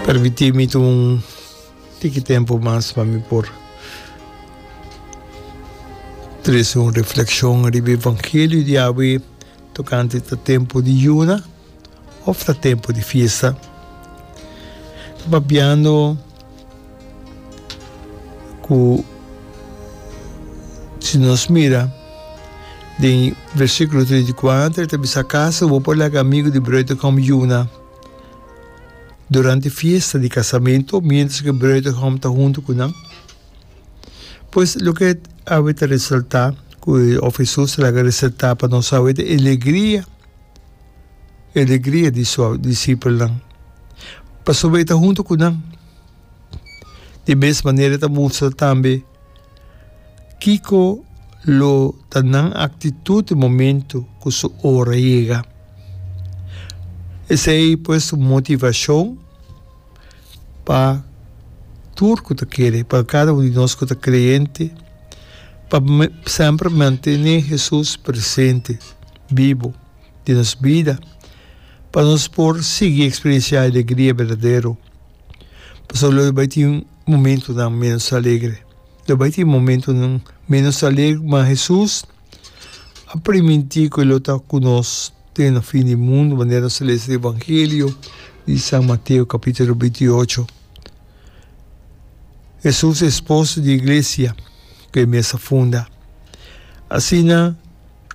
Permití mi ta un tiki tempu mas pa mi por trese un reflekshon riba e evangelio di awe tokante ta tempu di yuna òf ta tempu di fiesta. Ta papiando. Ku si nos mira den versikulo treinta i kuater ta bisa, Akaso bo por laga amigu di Bruitegom yuna durante fiesta di kasamentu miéntras ku Bruitegom ta huntu ku nan? Pues loke awe ta resaltá ku òf Hesus ta laga resaltá pa nos awe ta e alegria, e alegria di su disipelnan pasobra e ta huntu ku nan. Di mes manera e ta mustra tambe kiko lo ta nan aktitut e momentu ku su ora yega. Esei pues un motivashon pa tur ku ta kere, pa kada un di nos ku ta kreyente, pa semper mantene Hesus presente, bibu. di nos bida, pa nos por sigui eksperensiá e alegria berdadero. Pasobra lo bai tin momentunan ménos alegre. Lo bai tin momentunan ménos alegre, ma Hesus a primintí ku e lo ta ku nos den na fin di mundu, manera nos ta lesa den Evangelio di San Mateo kapítulo binti ocho. Hesus e Esposo di Iglesia ku e mes a funda. Asina.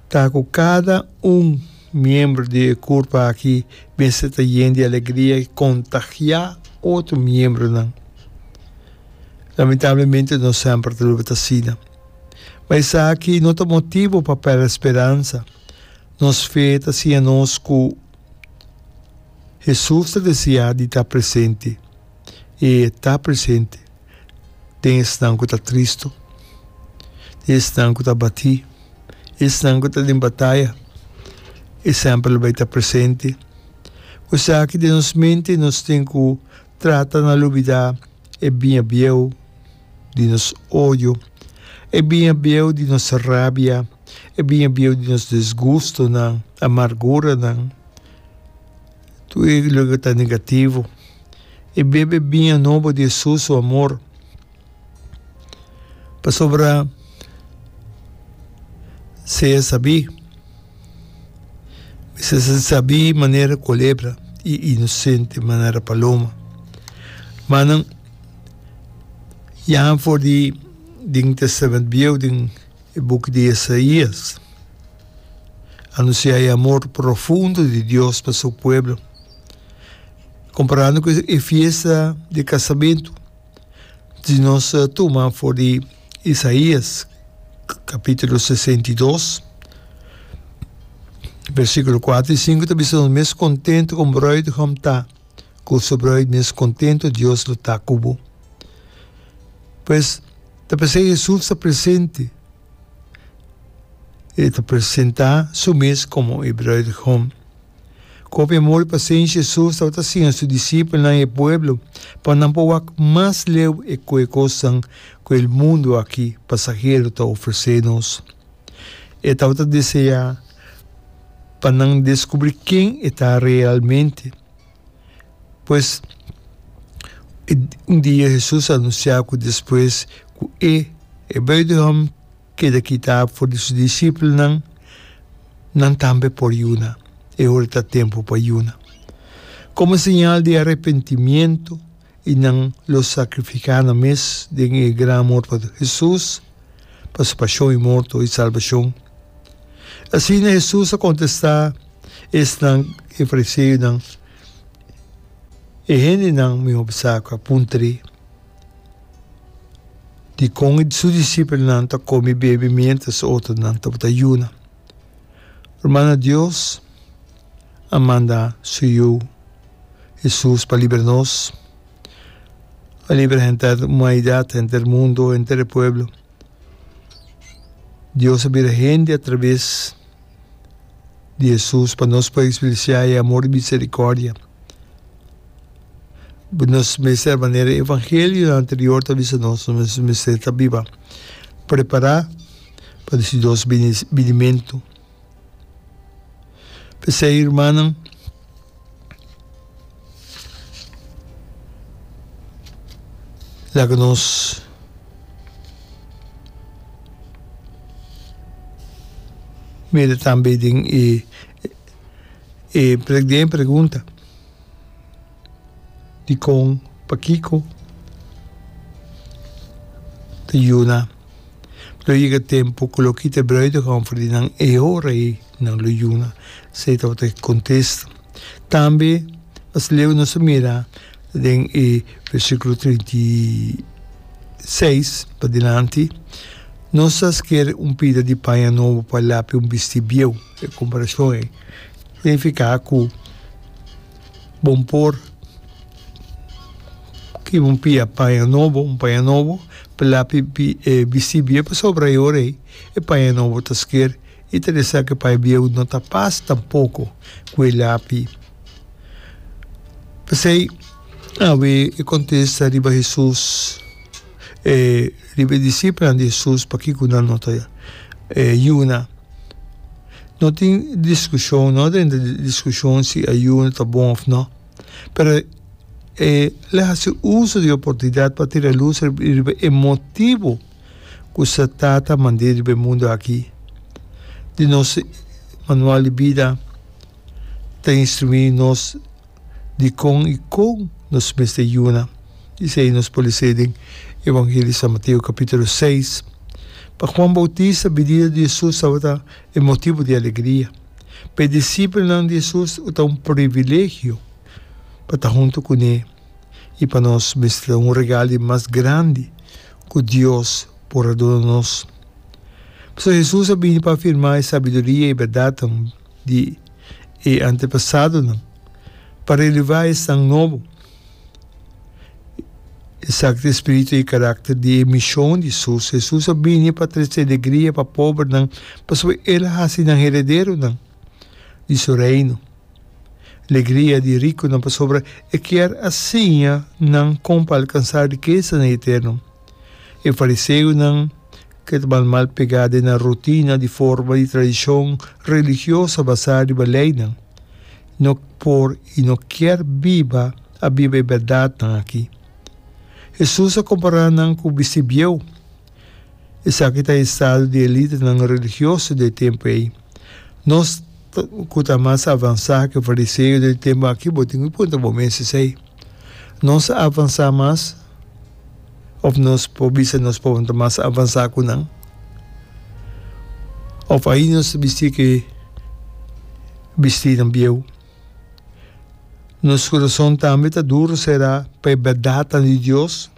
Ta ku kada un miembro di e kurpa aki mester ta yen di alegria i kontagiá otro miembronan. Lamentablemente no semper ta logra ta asina. Ma esaki no ta motibu pa pèrdè speransa. Nos fe ta siña nos ku Hesus ta deseá di ta presente, i e ta presente. den esnan ku ta tristu, den esnan ku ta batí, esnan ku ta den bataya, e semper lo bai ta presente. Esaki den nos mente nos tin ku trata na lubidá e biña bieu di nos odio, e biña bieu di nos rabia, e biña bieu di nos disgustonan, amarguranan. Tur e loke ku ta negativo. E bebe biña nobo di Hesus su amor. Pasobra se a sabí, mester si sabí manera kulebra i inosente manera paloma. M'a nan, ya for di den Tèstament Bieu, den E buk di Esaías anunsiá e amor profundo di Dios pa su pueblo. Komparando ku e fiesta di kasamentu, si nos tuma for di Esaías kapítulo sesenta i dos, versíkulo kuater i sinku ta bisa nos, Mes kontentu kon bruidegom ta ku su bruid, mes kontentu Dios lo ta ku bo. Pues, Ta p'esei Hesus ta presente. E ta presentá su mes komo e Bruidegom. Ku hopi amor i pasenshi Hesus tabata siña su disipelnan i e pueblo pa nan por wak mas leu e koe kosnan ku e mundu aki pasahero ta ofresé nos. E tabata deseá pa nan deskubrí ken e ta realmente. Pues, un dia Hesus a anunsiá ku despues ku e, e Bètlehem, keda kitá for di su disipelnan, nan tambe por yuna. E ora ta tempu pa yuna. Komo señal di arepentimiento, i nan lo sakrifiká nan mes den e gran mort pa Hesus, pa su pashon i morto i salbashon. Asina Hesus a kontestá esnan, e fariseunan, e hendenan mihó bisá ku a puntr'é dikon su disipelnan ta kome i bebe miéntras otronan tabata yuna. Rumannan Dios! a manda su Yu Hesus pa libra nos. A libra henter humanidat, henter mundo, henter e pueblo. Dios a bira hende atraves di Hesus pa nos por expresiá e amor i miserikòrdia. Nos mester, manera e evangelionan anterior ta bisa nos, nos mester ta biba prepará pa si Dios bini binimentu. P'esei, hermannan, laga nos mira tambe den e e pregunta. dikon, pakiko ta yuna. Lo yega tempu ku loke ta bruido hòmber di nan e ora ei nan lo yuna, esei tabata e kontesta. Tambe mas leu nos a mira den e versíkulo treinta i seis padilanti, Nos a sker un pida di paña nobo pa lape un bisti bieu. E komparashon ei ta nifiká ku. Bo por kiba un pia paña nobo, un paña nobo, pa lapi bistí bieu pasobra e ora ei e paña nobo ta sker i ta desa ku e paña bieu no ta pas tampoko ku e lapi. P'esei awe e kontesta riba Hesus riba e disipelnan di Hesus pakiko nan no ta yuna. No tin diskushon, no drenta di diskushon si ayuno ta bon of no, pero e lo hasi uso di oportunidat pa tira lus riba e motibu ku Satan ta mand'é riba e mundu aki. Di nos manual di bida ta instruí nos. dikon i kon nos mester yuna. I esei nos por lesa den Evangelio di San Mateo kapitulo seis. Pa Juan Boutista, binida di Hesus tabata e motibu di alegria. Pa e disipelnan di Hesus tabata ta un privilegio pa ta huntu kuné. I pa nos mester ta un regal di mas grandi ku Dios por a duna nos. Pasobra Hesus a bini pa afirmá e sabiduria i bèrdatnan. di e antepasadonan pa renuvá e san nobo, esaki ta e spiritu i e karakter di e mishon di Hesus. Hesus a bini pa trese alegria pa pobernan pasobra el a hasi nan herederonan di su Reino. Alegria di rikunan pasobra e kier a siña nan kon pa alkansá rikesa na e eterno. E fariseonan, ke tabanan mal pegá den nan rutina di forma di tradishon religioso basá riba leinan, no por i no kier biba a biba e bèrdatnan akí. Hesus a kompará nan ku bisti bieu. Esaki ta e estado di elitenan religioso di e tempu ei. Nos, ku ta mas avansá ku e fariseo den e tempu akí, bo tin ku puntra bo mes esei, nos a avansá mas? Of nos por bisa nos por ta mas avansa ku nan. Of ahi nos ta bisti ke bistinan bieu. Nos kurason tambe ta duru sera pa e bèrdatnan di Dios.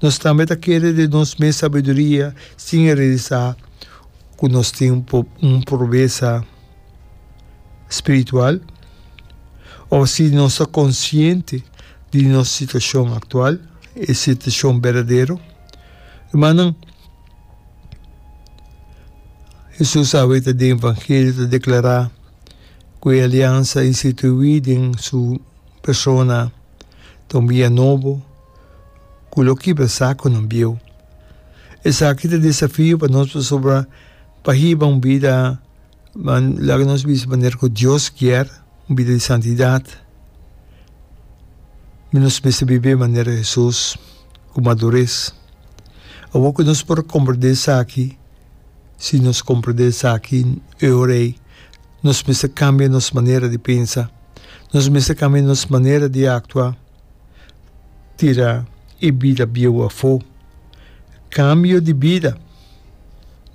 Nos tambe ta kere den nos mes sabiduria sin e realisá ku nos tin un probesa. spiritual o si nos ta konsiente di nos situashon aktual, e situashon berdadero. Rumannan, Hesus aweta den evangelio ta deklará ku e aliansa instituí den su persona ta un bia nobo ku lo kibra sakunan bieu. Esaki ta desafio pa nos pasobra pa hiba un bida Nan laga nos bisa manera ku Dios kier, un bida di santidat. Mi nos mester bib'é manera Hesus, ku maduris. Awor ku nos por komprendé esaki, si nos komprendé esaki e ora ei, nos mester kambia nos manera di pensa, nos mester kambia nos manera di aktua. tira e bida bieu afó. Kambio di bida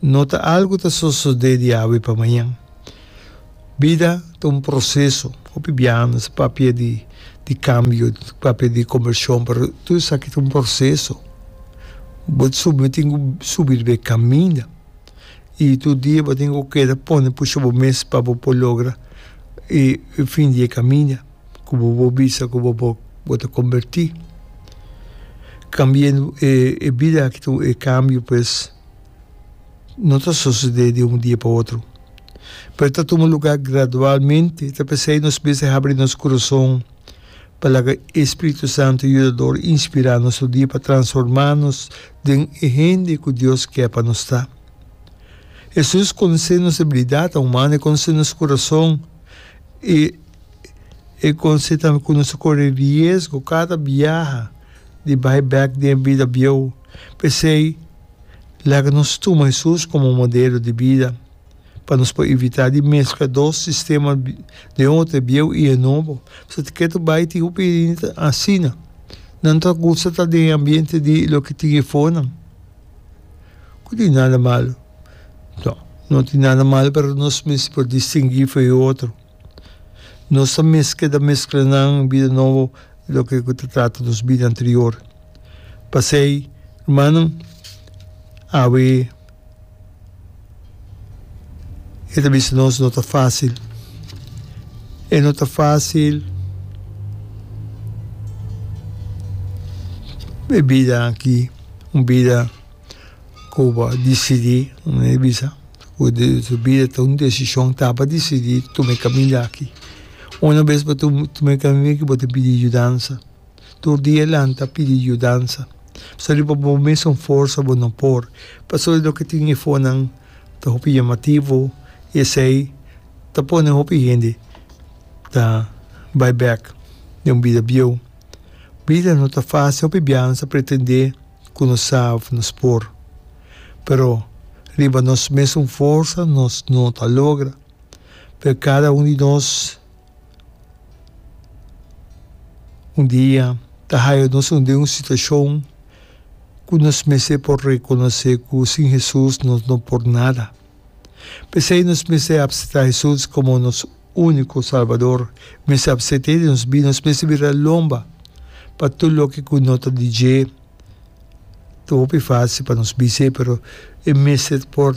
no ta algu ta sosodé di awe pa mañan. Bida ta un proseso. Hopi biaha nos a papia di kambio, papia di konvershon, pero tur esaki ta un proseso. Bo su bo tin ku subi riba e kaminda i tur dia bo tin ku keda pone pusha bo mes pa bo por logra e fin di e kaminda. ku bo por bisa ku bo por bo ta kombertí kambiando e bida aki ta un e kambio pues no ta sosodé di un dia pa otro pero ta tuma lugá gradualmente ta p'esei nos mes di habri nos kurason pa laga e spiritu santu yudador inspirá nos tur dia pa transformá nos den e hende ku Dios ke pa nos ta. Hesus konosé nos debilidat, humano, e konosé nos kurason i. E conse tambe cu nos ta core riesgo cada biaha di bay bek den e bida bieuw. P'esey, laga nos tuma Hesus como modelo di bida pa nos por evita di mezcla dos sistema den un hotel bieuw y e nobo. Pasobra te keda bay tin hopi hende asina. Nan ta gusta ta den e ambiente di loke tin e fonan. No tin nada malo. No tin nada malo pero nos misti por distingui fu e otro. Nos ta mezcla ta mezcla nan bida nobo loke cu ta trata nos bida anterior. Pasey, rumannan, awe e ta bisa nos no ta facil. E no ta facil e bida aki, un bida cu bo a dicidi, un bisa. Cu su bida ta un decision ta pa decidi tuma e caminda aki. Una bes bo ta tuma e caminda aki bo tin pidi yudansa. Tur dia e lanta pidi yudansa. Pasobra di pa bo mesun forsa bo no por. Pasobra di loke tin e fonan ta hopi yamativo y esey ta pone hopi hende ta bay bek den un bida bieuw. Bida no ta facil, hopi biaha nan sa pretende. ku nos sa òf nos por. Pero riba nos mesun forsa nos no ta logra. Pero kada un di nos un dia ta haya nos un den un situashon ku nos mester por rekonosé ku sin Hesus nos no por nada. P'esei nos mester apseptá Hesus komo nos úniko Salbador, mester apsept'é den nos bida, nos mester bira lomba pa tur loke ku no ta di dje. Ta hopi fásil pa nos bis'é, pero e mester por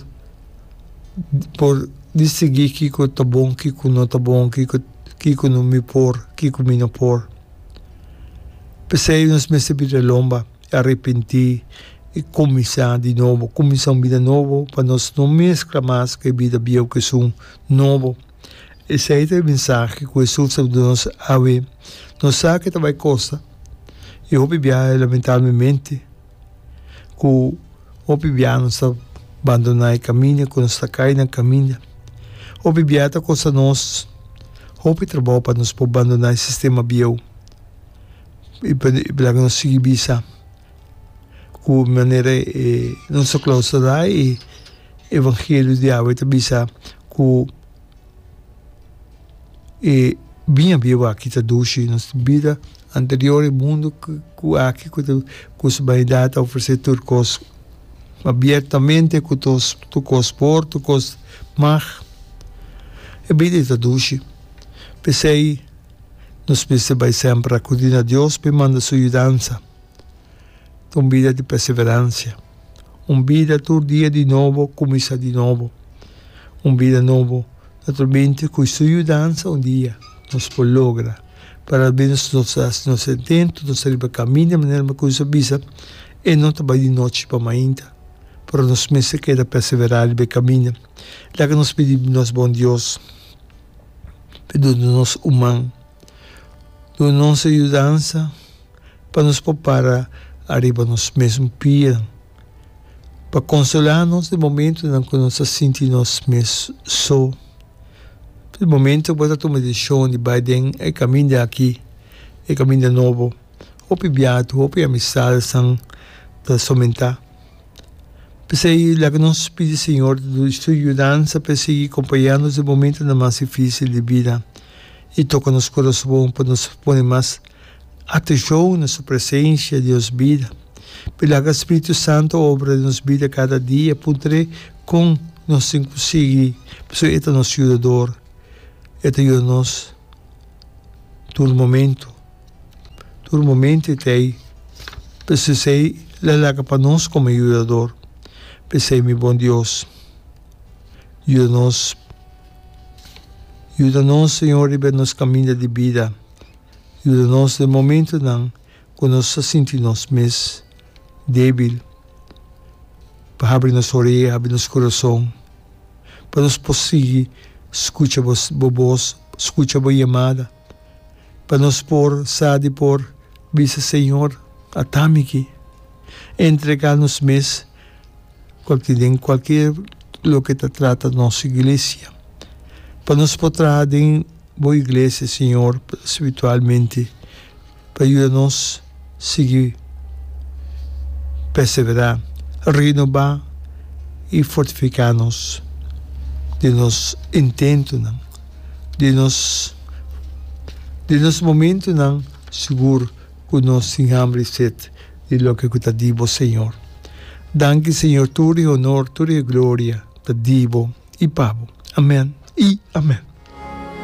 por distinguí kiko ta bon, kiko no ta bon, kiko kiko mi por, kiko mi no por. P'esei nos mester bira lomba. Arepentí i kuminsá di nobo. Kuminsá un bida nobo pa nos no meskla mas ku e bida bieu ku esun nobo. Esei ta e mensahe ku Hesus a duna nos awe. Nos sa ku e ta bai kosta, i hopi biaha lamentablemente ku hopi biaha nos ta bandoná e kaminda, ku nos ta kai na kaminda. Hopi biaha ta kosta nos hopi trabou pa nos por bandoná e sistema bieu. I pasobra nos sigui bisa ku manera e nos a klausurá e evangelio di awa e ta bisa ku e biña bieu aki ta dushi nos bida anterior, e mundu ku aki ku ta kusa banidat ta ofresé tur kos abiertamente ku tur kos por, tur kos mag. E bida ei ta dushi. P'esei. Nos mester bai semper akudí na Dios pa e manda Su yudansa ta un bida di perseveransia, un bida tur dia di nobo kuminsá di nobo, un bida nobo. Naturalmente ku Su yudansa un dia nos por logra, pero almenos nos ta hasi nos intento, nos ta riba kamí di manera mi kusa a bisa, e no ta bai di nochi pa mainta, pero nos mester keda perseverá riba e kaminda. Laga nos pidi nos bon Dios. perdon di nos human. Duna nos e yudansa pa nos por para ariba nos mesmo pia, pa consola nos den momentonan cu nos ta sinti nos mes so. Di momento cu bo ta tuma decision di bay den e caminda aki, e caminda nobo, hopi biaha tu, hopi amistadesan ta somenta. P'esei, laga nos pidi Señor su yudansa pa e sigui kompañá nos den momentunan mas difísil di bida i toka nos korasbon pa nos pone mas atenshon na su presensha den nos bida. P'e laga Spiritu Santu obra den nos bida kada dia, puntr'é kon nos tin ku sigui, pasobra e ta nos Yudador, e ta yuda nos tur momentu. Tur momento e ta ei. Pesesei lo laga pa nos como e yudador pesei, Mi bon Dios, yuda nos. Yuda nos, Señor, riba e nos caminda di bida. Yuda nos den momentonan cu nos a sinti nos mes debil. Pa habri nos orea, habri nos corazon, pa nos por sigui scucha bo, bo boz, scucha bo yamada. pa nos por sa di por bisa, Señor, a tamiki entrega nos mes cual tin den cualkier loke ta trata nos iglesia, pa nos por traha den bo iglesia, Señor, spiritualmente. pa yuda nos sigui perseverá renobá i fortifiká nos den nos intentonan, den nos den nos momentonan sigur ku nos tin hamber i set di loke ku ta di bo Señor. Danki Señor tur e honor tur e gloria ta di bo i pa bo. Amén i amén.